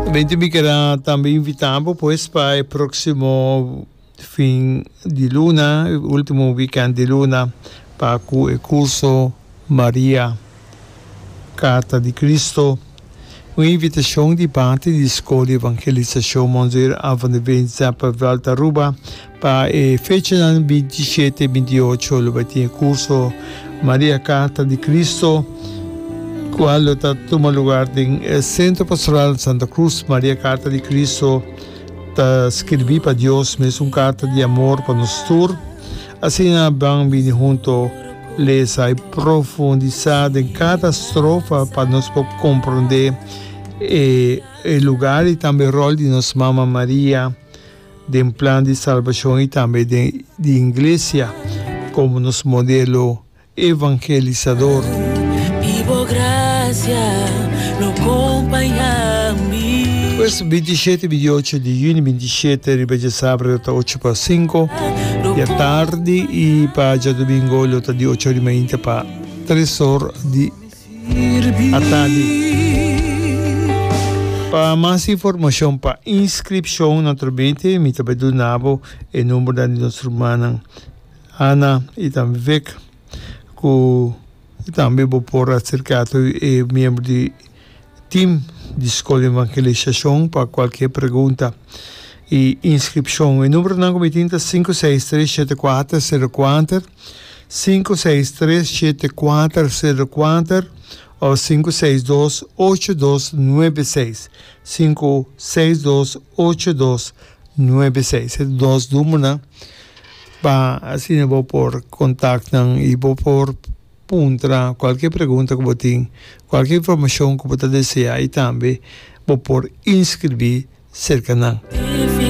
Gemeente Bikera tambe invita bo pues pa e próksimo fin di luna, e último weekend di luna, pa ku e kurso Maria, Karta di Kristu, un invitashon di parti di Skol di Evangelisashon Monseer Alphen de Veenza pa Vèlta Aruba, Pa e fechanan binti shete i binti ocho lo bai tin e kurso Maria Karta di Kristu, kual lo ta tuma lugar den e Sentro Pastoral Santa Krus. Maria Karta di Kristu ta skirbí pa Dios mes un karta di amor pa nos tur. Asina ban bini huntu lesa i profundisá den kada strofa pa nos por komprondé e lugar i tambe e ròl di nos Mama Maria. den plan di salbashon i tambe den di Inglesia komo nos modelo evangelisador. I bo grasia lo kompañá mi. Pues, binti shete bidi ocho di yuni, binti shete riba dje sabra lo ta ocho pa sinko dja tardi i pa djadumingo lo ta di ocho orimainta pa tres or di. a tardi. Pa mas informacion pa inscripcion na Trobete mi ta bay duna bo e numbernan di nos rumannan Ana y tam Vic cu tambe bo por acerca to e miembro di team di School di Evangelisacion pa cualkier pregunta y inscripcion. E numbernan cu mi tin ta sinku seis tres shete kuater sero kuater sinku seis tres shete kuater sero kuater òf sinku seis dos ocho dos nuebe seis, sinku seis dos ocho dos nuebe seis. E dos numernan pa asina bo por kontak nan i bo por puntra kualke pregunta ku bo tin, kualke informashon ku bo ta desea i tambe bo por inskribí serka nan.